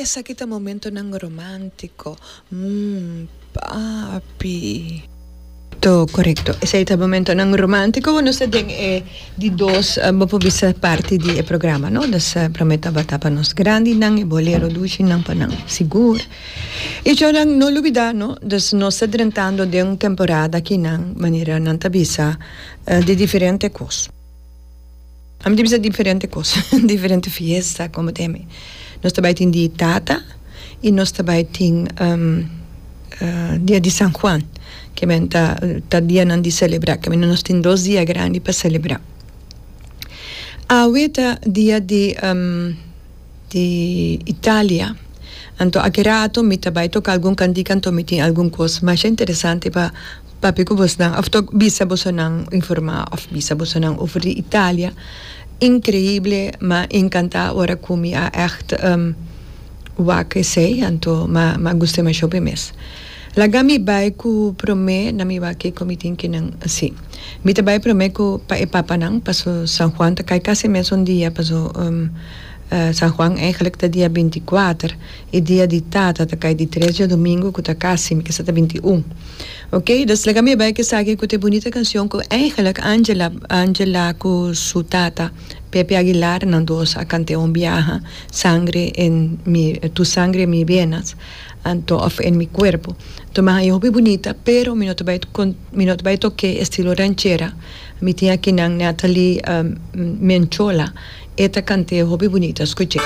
Esaki ta momentonan romántico, mm, papi. To correcto. Esaki ta momentonan romántico cu nos ta den e di dos, bo por bisa parti di e programa, no? Nos prome tabata pa nos grandinan, e bolero ducinan pa nan, sigur. Y djònan, no lubida, no? Dus nos ta drentando den un temporada kinan manera nan ta bisa di diferente cos. Ami ta bisa diferente kos, diferente fiesta komo ta emi. Nos ta bai tin dia di tata i nos ta bai tin dia di San Juan, kimen ta ta dianan di selebrá, kimen nos tin dos dia grandi pa selebrá. Awe ta dia di. di Italia. Anto aki rato mi ta bai toka algun kantika anto mi tin algun kos masha interesante pa papia ku bosonan òf tok bisa bosonan informá òf bisa bosonan over di Italia. Inkreible m'a enkantá ora ku mi a ègt wak esei anto m'a guste masha hopi mes. Laga mi bai ku promé na mi wak ei ku mi tin kinan si. Mi ta bai promé ku pa e papanan paso San Juan ta kai kasi e mes un dia paso. San Juan eigenlijk ta dia binti kuater i dia di Tata ta kai di tres diadomingo ku ta kasi mi kasa ta binti un. Ok, dus laga mi a bai ku esaki ku ta e bunita kanshon ku eigenlik Angela Angela ku su tata Pepe Aguilar nan dos a kanté un biaha, Sangre en mi tu sangre en mi venas anto òf en mi kuerpo. Anto mi a haña hopi bunita pero mi no ta bai mi no ta bai tok'é estilo ranchera. Mi tin aki nan Nathalie Menchola e ta cant'e hopi bunito a scuch'e.